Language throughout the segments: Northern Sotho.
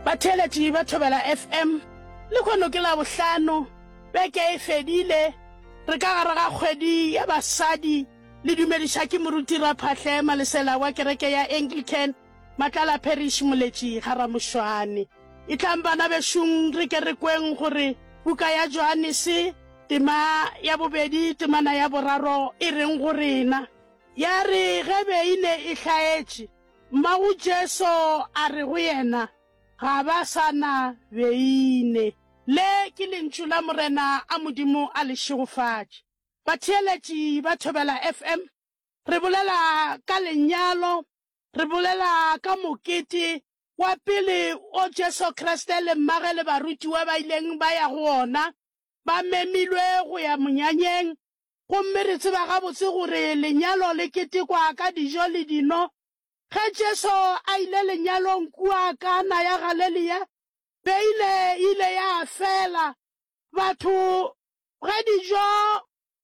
Batheeletši ba Thobela FM, Lekhono ke Labohlano, beke e fedile, re ka gare ga kgwedi ya basadi. Le dumediša ke Moruti Raphahle Malesela wa kereke ya Anglican, Matlala Parish, Moletši ga Ramošwane. Etlang bana bešong re ke re kweng gore buka ya Johanese, tema ya bobedi, temana ya boraro e reng go rena. Ya re ge beine e hlaetše, Mmago Jesu a re go yena, Ga ba sa na beine. Le ke lentšu la Morena a Modimo a le šegofatše. Batheeletši ba Thobela FM, re bolela ka lenyalo, re bolela ka mokete wa pele o Jesu Kriste le Mmage le barutiwa ba ileng ba ya go ona, ba memilwe go ya monyanyeng, Gomme re tseba gabotse gore lenyalo le ketekwa ka dijo le dino. Ge Jesu a ile lenyalong kua Kana ya Galelea, beine e ile ya fela. Batho, ge dijo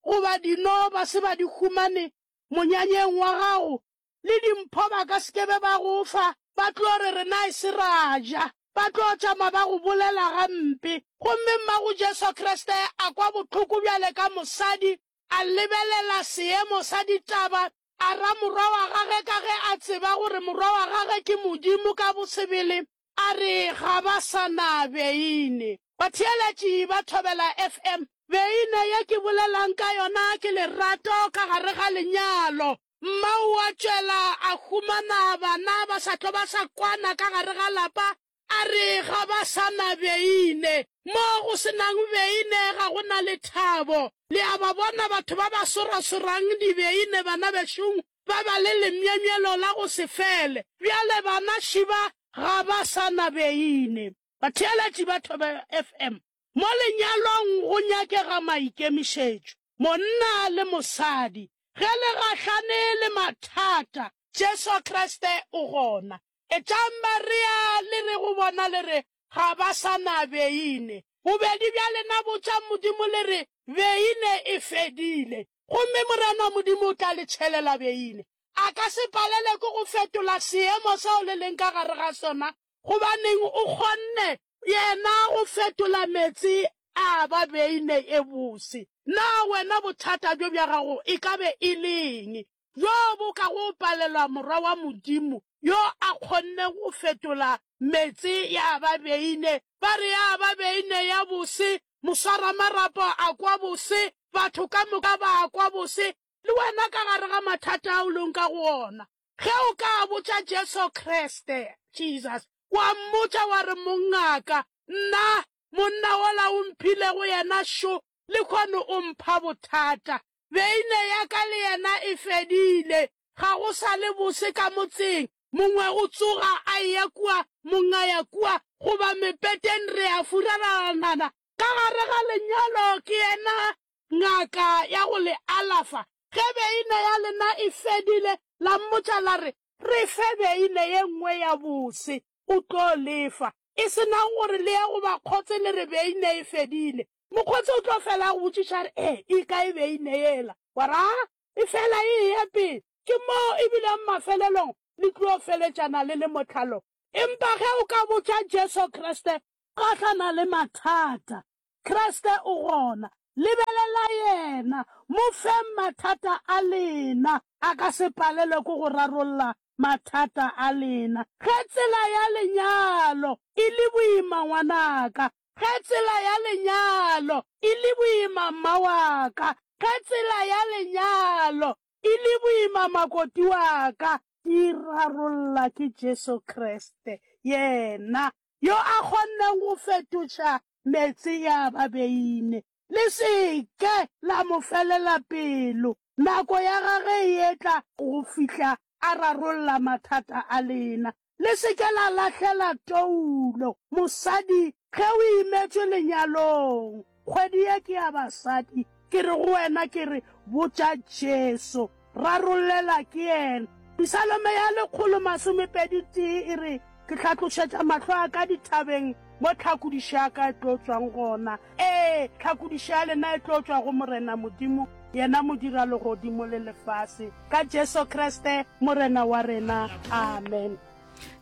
goba dino ba se ba di humane monyanyeng wa gago, le dimpho ba ka se ke be ba go fa, ba tlo re, Rena e se ra ja. Ba tlo tšama ba go bolela gampe. Gomme Mmago Jesu Kriste a kwa bohloko bjale ka mosadi, a lebelela seemo sa ditaba, a ra morwa wa gage ka ge a tseba gore morwa wa gage ke Modimo ka bosebele, a re, Ga ba sa na beine. Batheeletši ba thobela FM. Beine ye ke bolela'ng ka yona ke lerato ka gare ga lenyalo. Mmau a tšwela a humana bana ba sa tlo ba sa kwana ka gare ga lapa, a re ga ba sa na beine. Mo go se nang beine ga go na lethabo. Le a ba bona batho ba ba sorasorang dibeine banabešong, ba ba le lemyemyelo la go se fele. Bjale bana šiba ga ba sa na beine. Batheeletši ba Thobela FM Mo lenyalong go nyakega maikemišetšo. Monna le mosadi, ge le gahlane le mathata, Jesu Kriste o gona. Etšang barea le re go bona le re, Ga ba sa na beine. Bobedi bja lena botšang Modimo le re, Beine e fedile. Gomme Morena Modimo o tla le tšhelela beine. A ka se palelwe ke go fetola seemo seo le leng ka gare ga sona Gobaneng o kgonne Yena go fetola meetse a ba beine e bose. Na wena bothata bjo bja gago e ka be e le eng bjo bo ka go palelwa Morwa wa Modimo yo a kgonne go fetola meetse ya ba beine? Ba re ya ba beine ya bose, moswaramarapo a kwa bose, batho ka moka ba a kwa bose, le wena ka gare ga mathata ao le nka go ona. Ge o ka botša Jesu Kriste, Jesus, wa mmotša wa re, Mongaka, nna, monna wola o mphilego yena šo, lehono o mpha bothata. Beine ya ka le yena e fedile. Ga go sa le bose ka motseng. Mongwe o tsoga a eya kua, mongwe a ya kua, goba mepeteng re a furalalanana ka gare ga lenyalo. Ke yena ngaka ya go le alafa. Ge beine ya lena e fedile, la mmotša la re, Re fe beine ye nngwe ya bose, o tlo le fa. E se nang gore le ye go bakgotse le re beine e fedile, mokgotse o tlo fela a go botšiša a re, E, e kae beine yela? Wa re, A, e fela e eya pele. Ke moo e bilego mafelelong le tlo feletšana le le motlhalong. Empa ge o ka botša Jesu Kriste, gahlana le mathata. Kriste o gona. Lebelela Yena. Mo feng mathata a lena. A ka se palelwe ke go rarolla mathata a lena. Ge tsela ya lenyalo e le boima, ngwanaka. Ge tsela ya lenyalo e le boima, mma wa ka. Ge tsela ya lenyalo e le boima, makoti wa ka. E rarolla ke Jesu Kriste. Yena yo a kgonnego go fetoša meetse ya ba beine. Le se ke la mo felela pelo. Nako ya gage e etla go fihla a rarolla mathata a lena. Le se ke la lahlela toulo, mosadi, ge o imetšwe lenyalong. Kgwedi ye ke ya basadi. Ke re go wena, ke re, Botša Jesu. Rarollela ke Yena. Pisalome ya lekgolo masomepedi tee e re, Ke hlatlošetša mahlo a ka dithabeng, mo tlhakodišo ya ka e tlo tšwang gona. Ee, tlhakodišo ya lena e tlo tšwa go Morena Modimo, Yena Modira legodimo le lefase, ka Jesu Kriste Morena wa rena. Amen.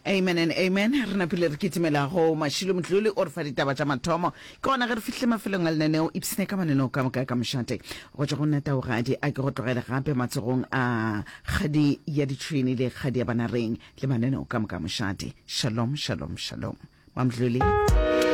amen and amen re napile re kitimelago mašilo motloli o re fa ditaba tša mathomo ke gona ge re fihle mafelong a lenaneo ipsene ka mananeo ka moka ka mošate go tšwa go nna taogadi a ke go tlogele gape matsogong a kgadi ya ditšhwene le kgadi ya banareng le mananeo ka moka mošate shalom shalom shalom mamdlole